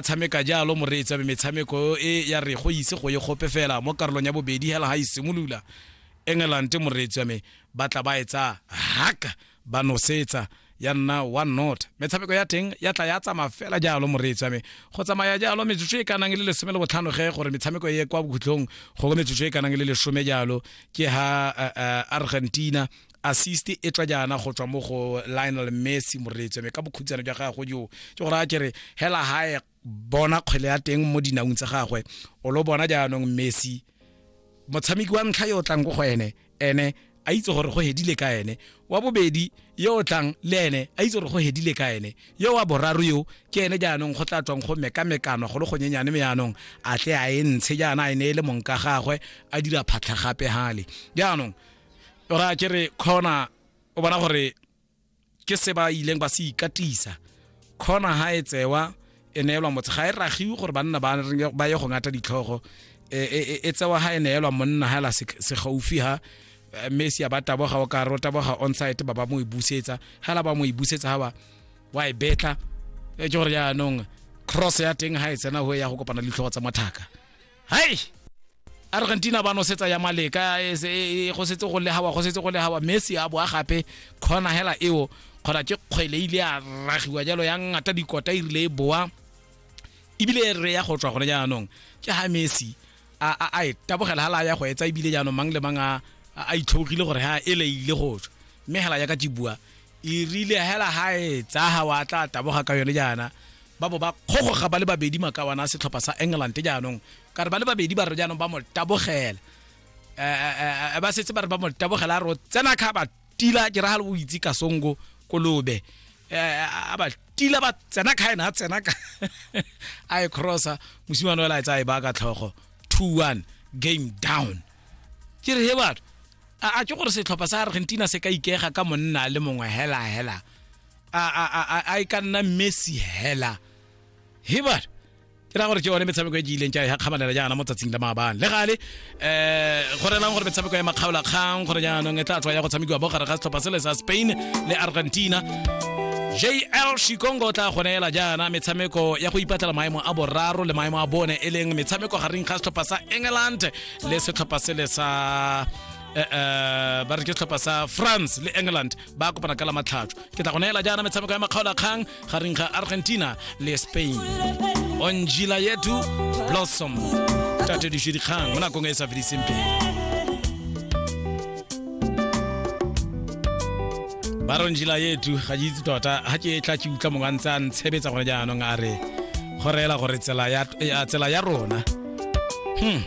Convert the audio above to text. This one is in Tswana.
tshameka jalo moreetsi abe metshameko e ya re go ise go ye gope fela mo karolong ya bobedi hela ga e simolola england moreetsi wa me ba tla ba etsa haka ba nosetsa ya nna one not metshameko ya teng ya tla ya tsamaya fela jalo moreetsi wa me go tsamaya jalo metsotso e kanang le lesome le botlhano ge gore metshameko e ye kwa bokhutlong go go metsotso e kanang le lesome jalo ke ha uh, uh, argentina assist e tswa jaana go tswa mo go lionel messi moreetso me ka bokhutsana jwa gagwe jo ke gore a kere hela hae bona kgwele ya teng mo dinaung tsa gagwe o lo bona jaanong messi motshameki wa ntlha yo o tlang ko go ene ene a itse gore go hedile ka ene wa bobedi yo o tlang le ene a itse gore go hedile ka ene yo wa boraro yo ke ene jaanong go tla tswang go mekamekano go le go nyenyane me jaanong a tle a e ntshe jaana a e ne e le mong ka gagwe a dira phatlha gape gale jaanong ora ke re khona o bona gore ke se ba ileng ba se ikatisa khona ha e tsewa e neelwa motse ga e ragiwe gore banna ba ba ye go ngata ditlhogo e, e, e, e tsewa ha e neelwa monna ha la se se gaufi ha eh, mme se ya ba taboga o ka ro taboga on site ba ba mo e busetsa ha la ba mo e busetsa ha ba wa e betla e ke gore jaanong cross ya teng ha e tsena ho ya go kopana le ditlhogo tsa mathaka hai argentina ba nosetsa ya maleka e se- e- e- go setse go legawa go setse go legawa messi a boa gape kgona hela eo kgona ke kgwele ile a ragiwa jalo ya ngata dikota e rile e boa ebile e re ya go tswa gone jaanong ke ha messi a a- a e tabogela hala ya go etsa ebile jaanong mang le mang a a- a itlhogile gore ha ele ile go tswa mme hela ya ka tibua e rile hela ha e tsaga wa tla taboga ka yone jaana ba bo ba kgogoga ba le babedi makawana a setlhopha sa england jaanong ka re ba le babedi ba re jaanong ba mo tabogela um ba setse ba re ba mo tabogela a re o tsena kha ba tila ke ragale o itse kasongo kolobe a ba tila ba tsena kha ena a tsena ka a e crossa mosimane o ela e tsaya e ba ka tlhogo two one game down ke re he batho a a ke gore setlhopha sa argentina se ka ikega ka monna le mongwe hela hela a a a a- a e ka nna messi hela hebar ke ra gore ke one metshameko e ke ileng ka ya kgamanela jaana mo tsatsing la maabane le gale um go relang gore metshameko ya makgaolakgang gore jaanong e tla tswa ya go tshamekiwa bo gare ga setlhopha sele sa spain le argentina jl shikongo o tla go neela jaana metshameko ya go ipatlela maemo a boraro le maemo a bone e leng metshameko gareng ga setlhopha sa england le setlhopha sele sa Eh, eh, ba re ke setlhopha sa france le england ba kopana ka la matlhatso ke tla go neela jaana metshameko ya makgaolakgang gareng ga argentina le spain onjila yetu blossom tatediše dikgang mo nakong e e sa fediseng pele ba re onjila yetu ga ke itse tota ga ke tla ke utlwa mongwe a ntse a ntshebetsa gone jaanong a re go reela gore tsela ya, ya, tsela ya rona hmm.